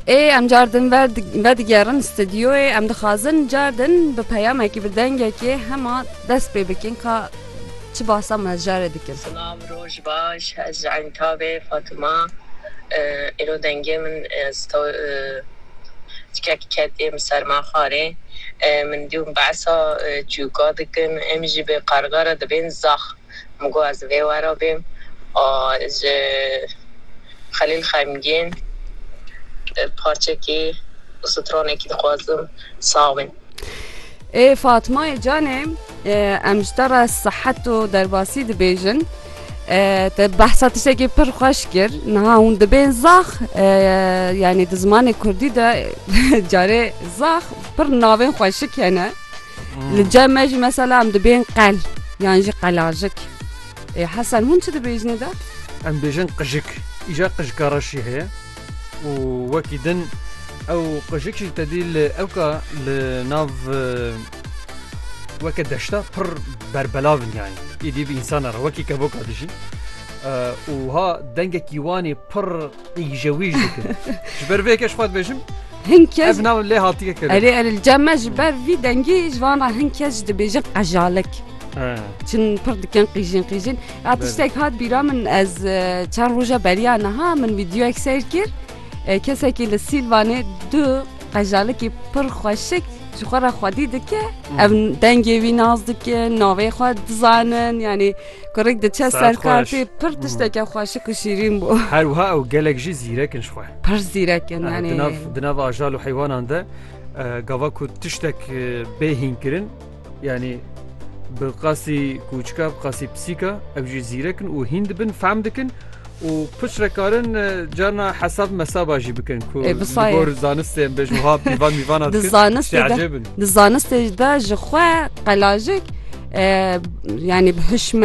Ê em car din vedigerin stûdyoyê em dixwazin car din bi peyamekî bi dengekê hema dest pê bikin ka çi basa me jarê dikin. Silav roj baş ez ji Entavê Fatima îro dengê min tikek ketiye min ser ma xwarê min dî û min behsa cûka dikin em jî bi qarga re dibên zax. min got ez vê we re bêm a ji Xelîl xemgîn parçekî û stronekî dixwazim sax bîn. Ê Fatmayê canê em ji te re sihet û derbasî dibêjin. Te behsa tiştekî pir xweş kir. Niha hûn dibên zax yanî di zimanê kurdî de carê zax pir navên xweşik hene. Li cem me jî mesela em dibên qel yan jî qelajik. Ê Hesen hûn çi dibêjinê de? Em bêjin qijik. Îja qijika reş jî heye û wekî din ew qijik jî tedî li ewka li nav weke deşta pir berbelav in yani. Îdî bi însan re wekî kevoka dijî. Û ha dengekî wanê pir Îje wî ji dikin. Ji ber vê yekê ji xwe dibêjim Hin kes ev nav lê hatike kirin. Erê erê li cem me ji ber vî dengî ji van re hin kes ji dibêjin qejalik. Çin pir dikin qîjin qîjin. Ya tiştek hat bîra min ez e, çend roja beriya niha min vîdeoyek seyr kir. E, Kesekî li Sîlvanê du qejalikî pir xweşik ji xwe re xwedî dike. Ev dengê wî naz dikin, navê xwe dizanin yanî Kurik diçe ser kartê pir tişteke xweşik û şîrîn bû. Her wiha ew gelek jî zîrek in ji xwe. Pir zîrek in yani. Di nav di nav ajal û heywanan de gava ku tiştek bê hînkirin yani bi qasî kûçika bi qasî pisîka ew jî zîrek in û hîn dibin fehm dikin û piç re karin carna hesab mesaba jî bikin ku gor zanistên bê ji wiha pîvan mîvana di zanistê di zanistê de ji xwe qelajik yani bi hişmen